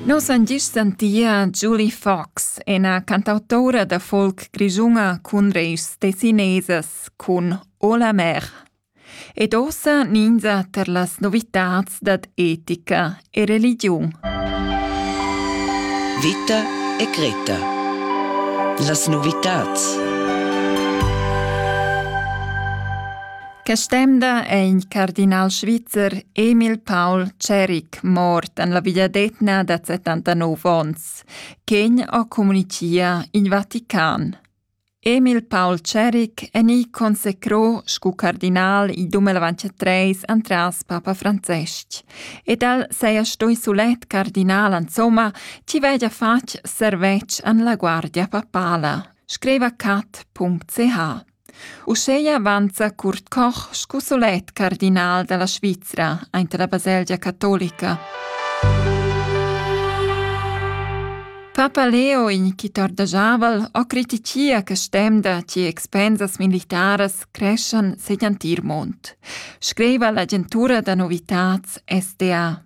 Nus han gist sentia Julie Fox, ina cantautora da folk grischuna cun reis tessinesas cun O la mer. Ed ossa ninza ter las novitats dad etica e religiun. Vita e Greta. Las novitats. Quest'emda è il cardinal svizzer Emil Paul Ceric mort en la vegliadetgna da 79 onns, ch'egn ha communitia in Vatican. Emil Paul Ceric è ni consecrò scu cardinal il 2023 antras Papa Francesc ed el seia stoi sulet cardinal insomma chi vegia fatg servetsch an la guardia papala, scriva cat.ch. Uscheia avanza Kurt Koch scu sulet cardinal dalla Svizra aint la baselgia catolica. Papa Leo, in chi tordajaval, ho critichia che stemda che expensas militaras creschan segl antir mond, scriva l'agentura da novitats SDA.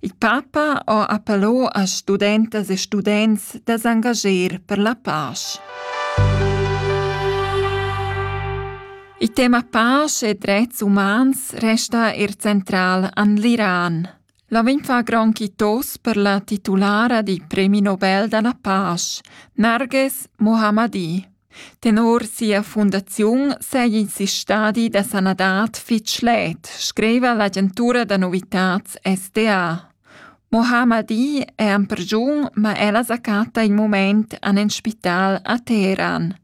Il papa ho appello a studentas e students da s'angager per la pasch. Il tema pasch e drets umans resta eir central an l'Iran. La vegn fa gran quitos per la titulara di Premi Nobel da la pasch, Narges Mohammadi. Tenor sia fundaziun seigi in stadi da sanadad fetg schlet, scriva l'agentura da novitads SDA. Mohammadi è en pergiun, ma ella sa chatta in mument en in spital a Teheran.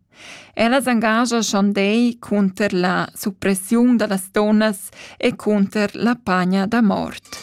Ella s'engascha schon dei cunter la suppressiun da las donnas e cunter la pagna da mort.